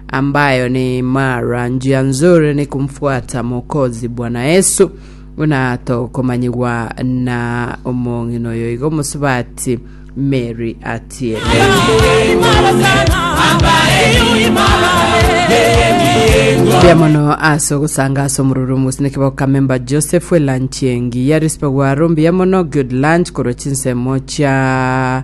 ambayo ni mara njia nzuri ni kumfuata Mwokozi Bwana Yesu, buna tokomanyigwa na omong'ina oyo igo omosubati Mary atiete. Mbuya mono ase ogosanga ase omororo omosineke bokamemba Joseph elanchi engiya rispe gwaro mbuya mono good lunch korwa chinsemo chia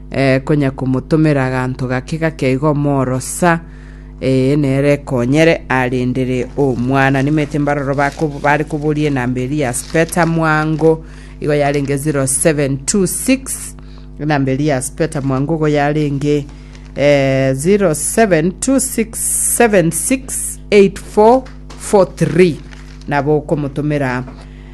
konya komotomera aganto gake gake igo omorosa ee nere ekonyere arendere omwana. Nimete mbaroro bako- bare koboria enamba eria ya speta mwango igo yarenge 0726 enamba eria ya speta mwango igo yarenge eh, 0726768443 nabo okomotomera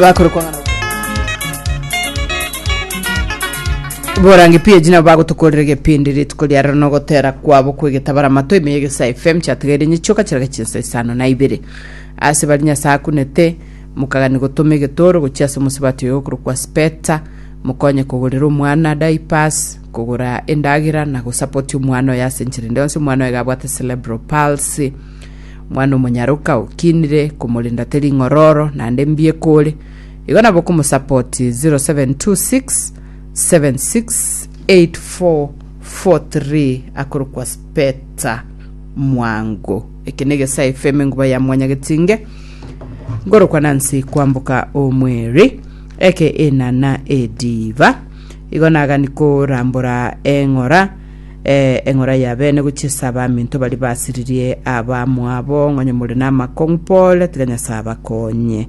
Bakore kwang'ana. borange page nabo bagotokorera egepindi rituko ria rero nogotera kwabo kwegetabara amato ime yegesa fm chatigaire nyichoka chiraga chinsa isano na ibere ase bari nyasae akunete mukagani gotoma egetoro gochia ase omosabati oyo okorokwa speta mokonye kogorera omwana diapers kogora endagera na gosapoti omwana oyo ase enchera ende yonsi omwana oyo iga abwate cerebral palsy Omwana-o-monyaroka okinire komorenda te ring'ororo naende mbieka ore. Igo nabo okomosapoti 0726 768443 akorokwa Speta Mwango. Eke na egesa FM enguba ya Mwanyagetinge nkorokwa Nancy kwamboka omweri eke enana ediva igo nagani korambora eng'ora Ee, eng'ora y'abeene gochia ase abaminto baria basiririe abamwabo, ng'onye more namakong'u pole, tiga Nyasae abakonye.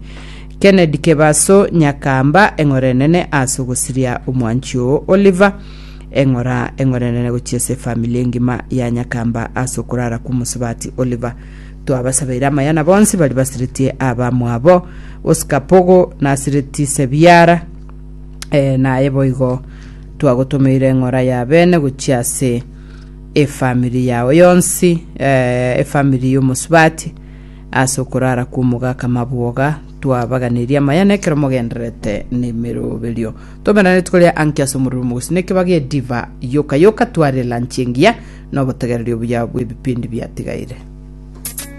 Kennedy Kebaso, Nyakamba, eng'ora enene ase ogosiria omwanchi oo Oliver. Eng'ora eng'ora enene gochia ase efamili engima ya Nyakamba ase okorara kw'omosubati Oliver. Twabasabeire amaya na bonsi baria basiretie abamwabo. Oscar Pogo, Nasiretie Sebiara, ee, naye boigo. Twagotomeire eng'ora ya bene gochia ase efamiri yao yonsi, eh, efamiri y'omosubati, ase okorara kw'omogaka mabwoga, twabaganirie amayene ekero mogendererete nemeroberio. Tomerane rituko ria anki ase omorero omogosi nekebaga ediva yoka yoka tware elanchi engiya nobotegereri obuya bw'ebipindi biatigaire.